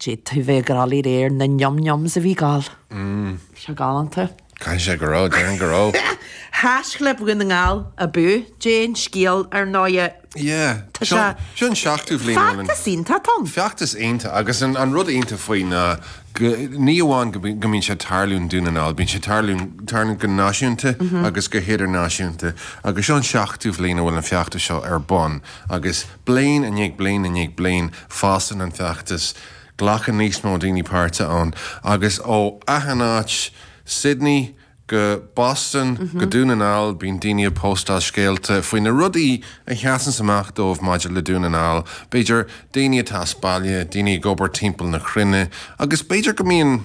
D'fhéadfaí bheith ag rá le réir na njom njoms a bhí Gall. Bhí sé galánta. Caithfidh sé go raibh, déarfainn go raibh. Thaisc le Dún na nGall abú Déan scéal, ar ndóigh. Yeah. Tá sé. Seo an seachtú bhliain ó rinne. Feachtas iontach, Tom. Feachtas iontach agus an rud iontach faoi ná go, ní amháin go mbíonn sé ag tarlú in Dún na nGall, bíonn sé ag tarlú, tarlú go náisiúnta agus go hidirnáisiúnta agus seo an seachtú bhliain a bhfuil an feachtas seo ar bun agus, Bliain i ndiaidh bliain i ndiaidh bliain, fásann an feachtas, glacann níos mó daoine páirt ann, agus ó achan áit, Sydney go Boston go Dún na nGall, bíonn daoine ag póstáil scéalta faoi na rudaí a sheasanns amach dóibh maidir le Dún na nGall, b'fhéidir daoine atá as baile, daoine ag obair timpeall na cruinne, agus b'fhéidir go mbíonn.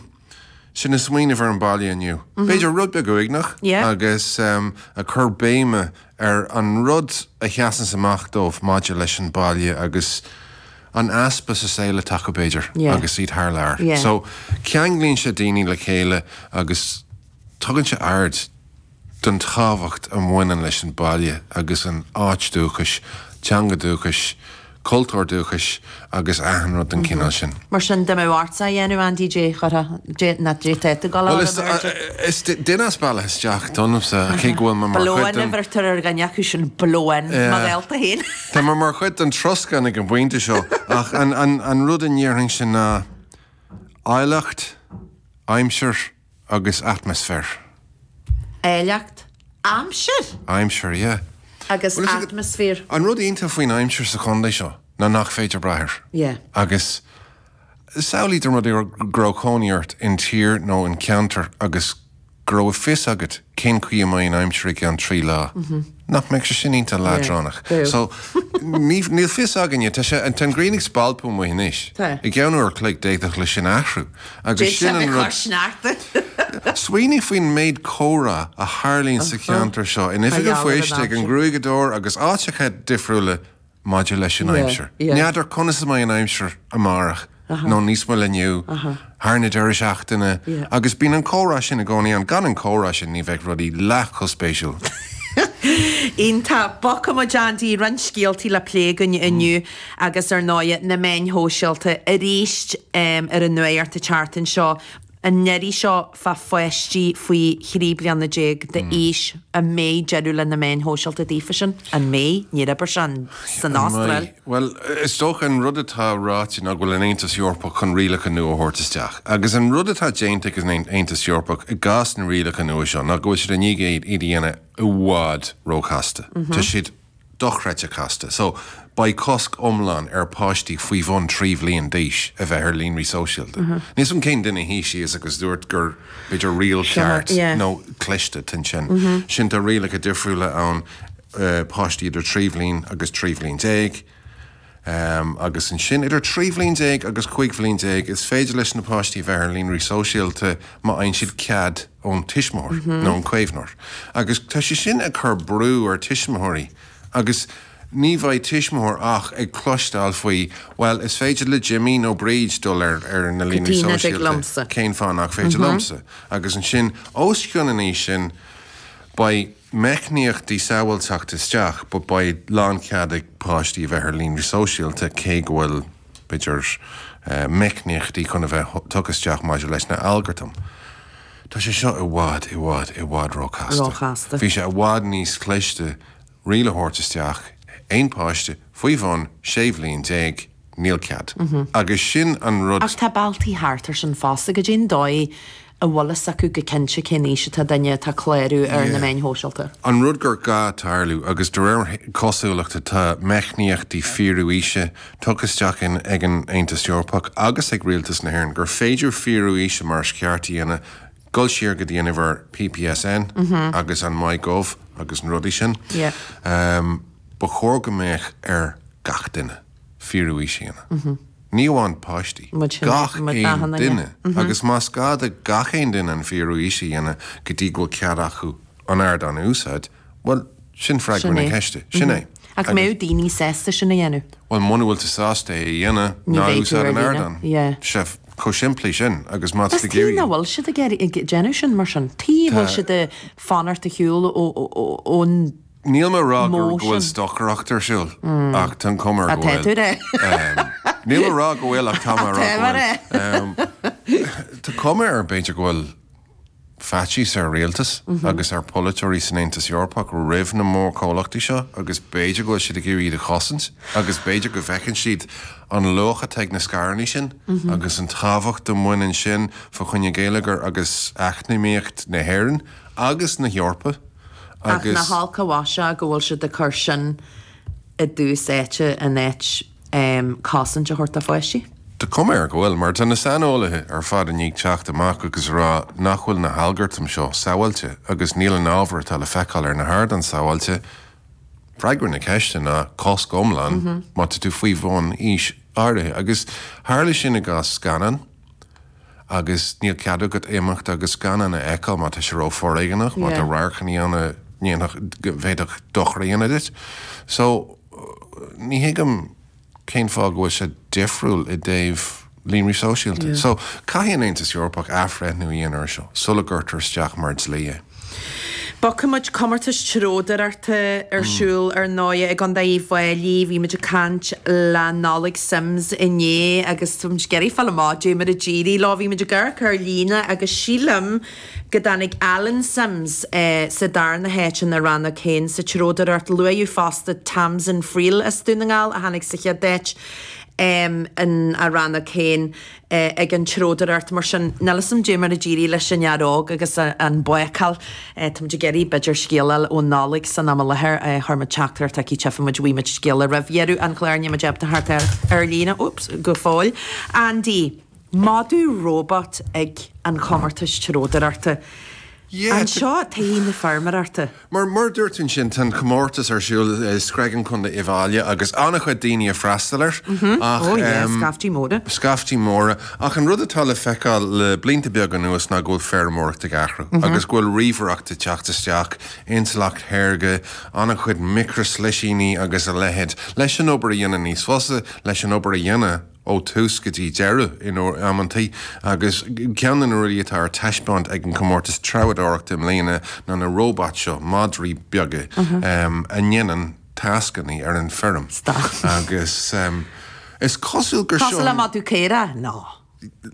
siad ag smaoineamh ar an baile inniu, b'fhéidir, rud beag uaigneach agus ag cur béime ar an rud a sheasanns amach dóibh maidir leis an baile agus an easpa sa saol atá acu, b'fhéidir, agus iad thar lear. So, ceanglaíonn sé daoine le chéile agus tugann sé aird. don tábhacht a bhaineann leis an baile agus an áit dúchais, teanga dúchais, cultúr dúchais agus achan rud den chineál sin. Mar sin de, má bheartaíteá a dhéanamh, Andy, d'fhéadfadh go bhféadfadh go leor a bheith ar. Is duine as baile isteach domhsa, cé go bhfuil mé mar chuid den. Blow-in a bheirtear ar dhuine acu sin, blow-in, mo ghaolta féin. Tá mé mar chuid den troscán ag an bpointe seo, ach an rud a ndéarfainnse ná áilleacht, aimsir. agus atmaisféar. Áilleacht. Aimsir. Aimsir, yeah. Agus Bhuel, is ag. atmaisféar. An rud iontach faoin aimsir sa chondae seo ná nach féidir brath air. Yeah. Agus samhlaigh dá mba rud go raibh cónaí ort in tír nó in ceantar agus go raibh a fios agat cén chaoi a mbeidh an aimsir i gceann trí lá. Nach mbeadh sé sin iontach leadránach. So, níl fios againne, tá sé, tá an ghrian ag spalpadh amuigh anois. Tá. I gceann uair an chloig, d'fhéadfadh leis sin athrú. Agus sin an rud. D'fhéadfadh ag cur sneachta. Smaoinigh faoin méid comhrá a tharlaíonn sa cheantar seo, in oifig an phoist, ag an gruaigeadóir agus áiteacha difriúla. Maidir leis an aimsir, n'fheadar conas a mbeidh an aimsir amárach, nó níos moille inniu, thar an deireadh seachtaine, agus bíonn an comhrá sin i gcónaí ann, gan an comhrá sin ní bheadh rudaí leath chomh spéisiúil. Iontach! Bogfaidh muid, Andy, roinnt scéaltaí le plé againn inniu agus ar ndóigh, na meáin shóisialta arís ar an nuacht thart anseo. an iarraidh seo fá pháistí faoi thrí bliana déag d'aois, an mbeidh deireadh le na meáin shóisialta daofa sin? An mbeidh? Níor oibir sé san An mbeidh? Astráil. Bhuel, is dócha, an rud atá ráite ná go bhfuil an Aontas Eorpach chun rialacha nua a thabhairt isteach. Agus an rud atá déanta ag an Aontas Eorpach i gcás na rialacha nua seo ná go bhfuil siad i ndiaidh iad a dhéanamh i bhfad róchasta. Tá siad. dochreidte casta. So, beidh cosc iomlán ar páistí faoi bhun trí bhliain d'aois a bheith ar líonraí sóisialta. Níl 's a'm cén duine a shuigh síos agus dúirt gur b'fhéidir riail cheart nó cliste atá ansin. Sin tá rialacha difriúla ann, páistí idir trí bhliain agus trí bhliain déag, agus ansin, idir trí bhliain déag agus cúig bhliain déag, is féidir leis na páistí bheith ar líonraí sóisialta má fhaigheann siad cead ón tuismitheoir nó ón caomhnóir. Agus tá sé sin ag cur brú ar tuismitheoirí agus ní bheidh tuismitheoir ach ag cloisteáil faoi, 'Bhuel, is féidir le Jimí nó Bríd dul ar na líonraí sóisialta, cén fáth nach féidir liomsa? Agus ansin, os cionn an aois sin, beidh meicníochtaí sábháilteachta isteach, ach beidh lánchead ag páistí a bheith ar líonraí sóisialta, cé go bhfuil, b'fhéidir, meicníochtaí chun a bheith tugtha isteach maidir leis na algartaim. Tá sé seo i bhfad, i bhfad, i bhfad róchasta. Bheadh sé i bhfad níos cliste riail a thabhairt isteach aon páiste faoi bhun sé bhliain déag Níl cead. Agus sin an rud. Ach tá bealtaí thart air sin fosta. Goidé'n dóigh a bhfuil fhios acu go cinnte cén aois atá duine atá ag clárú ar na meáin shóisialta? An rud gur gá tarlú, agus de réir cosúlachta tá meicníochtaí fíorú aoise tugtha isteach ag an Aontas Eorpach agus ag Rialtas na hÉireann, gur féidir fíorú aoise mar is ceart a dhéanamh, dul siar go dtí an uimhir PPSN agus an MyGov agus na rudaí sin. Ba chóir go mbeadh ar gach duine. fíorú aoise a dhéanamh, ní amháin páistí, gach aon duine, agus más gá do gach aon duine an fíorú aoise a dhéanamh go dtí go bhfuil cead acu an ardán a úsáid, bhuel, sin freagra na ceiste, sin é. Ach an mbeadh daoine sásta sin a dhéanamh? Bhuel, muna bhfuil tú sásta é a dhéanamh, ná úsáid an ardán. Sea, chomh simplí sin, agus má tá tú ag iarraidh. Cén fáth nach bhfuil siad ag déanamh sin mar sin, cén fáth a bhfuil siad ag fanacht ar shiúl ón. Níl mé a rá go bhfuil stocaireacht ar siúl, ach tá an chuma air go bhfuil. Tá tú ann. Níl mé a rá go bhfuil, ach tá mé a rá go bhfuil. Tá tú ann. Tá cuma air, b'fhéidir, go bhfuil faitíos ar rialtas agus ar pholaiteoirí san Aontas Eorpach roimh na mórchomhlachtaí seo agus b'fhéidir go bhfuil siad ag iarraidh iad a chosaint agus b'fhéidir go bhfeiceann siad an luach atá ag na scaireannaí sin agus an tábhacht a mbaineann sin fá choinne gheilleagar agus eacnamaíocht na hÉireann agus na hEorpa. Ach nach olc an mhaise go bhfuil siad ag cur sin i dtús áite in áit cosaint a thabhairt do pháistí? Tá cuma air go bhfuil, mar tá na saineolaithe ar fad i ndiaidh teacht amach agus a rá nach bhfuil na halgartaim seo sábháilte agus níl an ábhar atá le feiceáil ar na hardáin sábháilte. Freagra na ceiste ná cosc iomlán má tá tú faoi bhun aois áirithe. Agus tharla sin i gcás scannán. agus níl cead agat imeacht agus gan é a fheiceáil má tá sé ró foréigeanach, má tá radharcanna ann a ndéanfadh, bhféadfadh dochar a dhéanamh duit. So, ní thuigim cén fáth go bhfuil sé difriúil i dtaobh líonraí sóisialta. So, caithfidh an tAontas Eorpach athbhreithniú a dhéanamh air seo sula gcuirtear isteach mar dlí é. Beidh na comórtais treabhdóireachta ar siúl, ar ndóigh, i gContae Uíbh Fháilí. Bhí muid ag caint le Nollaig Simms inné agus tá muid ag iarraidh fáil amach dé mar a d'éirigh leo. Bhí muid ag amharc ar líne agus sílim go dtáinig Alan Simms sa darna háit ina rannóg féin sa treabhdóireacht. Luaíodh fosta Tamzin Friel as Dún na nGall a tháinig sa chéad áit in a rannóg féin. ag an treabhdóireacht. Mar sin, níl 'fhios a'm Dé mar a d'éirigh leis an fhear óg agus an bácáil. Táimid ag iarraidh b'fhéidir scéala a fháil ó Nollaig san am i láthair. Chuir muid teachtaireacht chuici, tchífidh muid, má fhaigheann muid scéala roimh dheireadh an chláir, níl muid ábalta teacht air ar líne, thíos, go fóill. Andy, madadh róbait ag an chomórtas treabhdóireachta. Seo todhchaí na feirmeoireachta. Mar a dúirt tú ansin, tá an comórtas ar siúl i Screagán, Contae Uíbh Fhailí, agus an-chuid daoine ag freastal air. Ó yeh, scaiftí móra. Scaiftí móra. Ach an rud atá le feiceáil le blianta beaga anuas ná go bhfuil feirmeoireacht ag athrú agus go bhfuil ríomhaireacht ag teacht isteach, intleacht shaorga, an-chuid micrishlisíní agus a leithéid, leis an obair a dhéanamh níos fusa, leis an obair a dhéanamh. ó thús go dtí deireadh in amanntaí, agus ceann de na rudaí atá ar taispeáint ag an gcomórtas treabhdóireachta i mbliana ná na róbait seo, madraí beaga a dhéanann tascannaí ar an fheirm. Agus is cosúil gur seo. Cosúil le madadh caora, nó.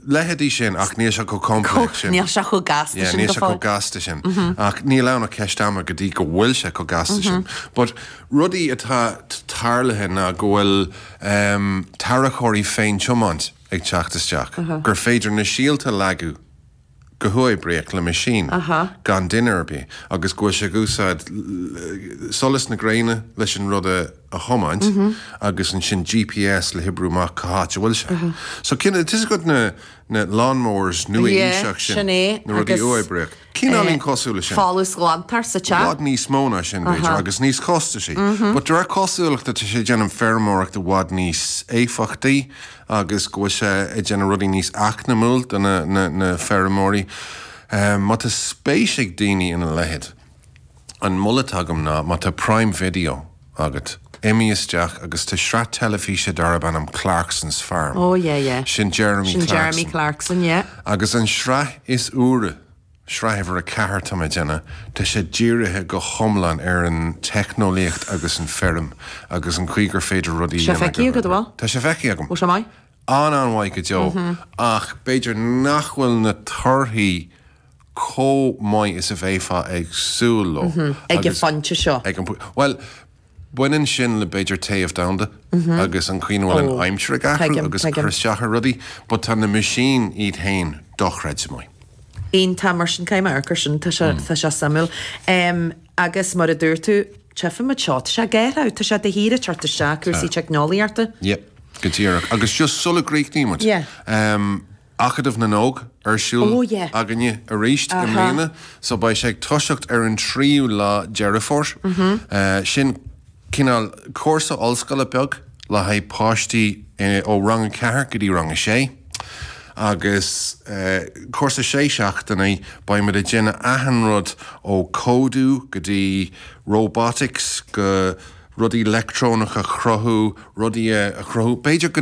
leithéidí sin, ach níl sé chomh complex sin. Níl sé chomh gasta sin go fóill. Níl sé chomh gasta sin. Ach níl ann ach ceist ama go dtí go bhfuil sé chomh gasta sin. But rudaí atá tarlaithe ná go bhfuil. um tarracóirí féin-tiomáint ag teacht isteach, gur féidir na síolta a leagadh go huathoibríoch le meaisín gan duine ar bith agus go bhfuil sé ag úsáid solas na gréine leis an rud a thiomáint agus ansin GPS le hoibriú amach cá háit a bhfuil sé. So, tá's agat na lawnmowers nua-aoiseacha sin, na rudaí uathoibríoch. Cineál cosúil leis sin. Folúsghlantóir sa teach. I bhfad níos mó ná sin, b'fhéidir, agus níos costaisí. But de réir cosúlachta, tá sé ag déanamh feirmeoireacht i bhfad níos éifeachtaí agus go bhfuil sé ag déanamh rudaí níos eacnamúla do na feirmeoirí. Má tá spéis ag daoine ina leithéid. An moladh atá agam ná, má tá Prime Video agat, imigh isteach agus tá sraith teilifíse darb ainm Clarkson's Farm. Oh yeah, yeah. Sin Jeremy Clarkson, yeah. Agus an sraith is úire, sraith uimhir a ceathair, tá mé ag déanamh, tá sé dírithe go hiomlán ar an teicneolaíocht agus an feirm agus an chaoi gur féidir rudaí a dhéanamh. Tá sé feicthe agat, an bhfuil? Tá sé feicthe agam. Bhuel, is é maith. An-an-mhaith go deo ach b'fhéidir nach bhfuil na torthaí chomh maith is a bheifeá ag súil leo ag an phointe seo. Bhuel, baineann sin le, b'fhéidir, téamh domhanda agus an chaoi a bhfuil an aimsir ag athrú agus ag cur isteach ar rudaí, but tá na machines iad féin dochreidte. Iontach mar sin, caithfidh mé amharc air sin, tá sé, tá sé suimiúil. Agus mar a dúirt tú, teipfidh muid seo, tá sé ag athrú, tá sé de shíor ag teacht isteach, cúrsaí teicneolaíochta. Yep, go díreach. Agus just sula gcríochnaíonn muid, Acadamh na nÓg ar siúl againne arís i mbliana so beidh sé ag toiseacht ar an tríú lá Deireadh Fómhair. Sin cineál cúrsa ollscoile beag le haghaidh páistí ó rang a ceathair go dtí rang a sé agus cúrsa sé seachtainí beidh muid ag déanamh achan rud ó códú go dtí robotics go rudaí leictreonach a chruthú, rudaí a chruthú b'fhéidir go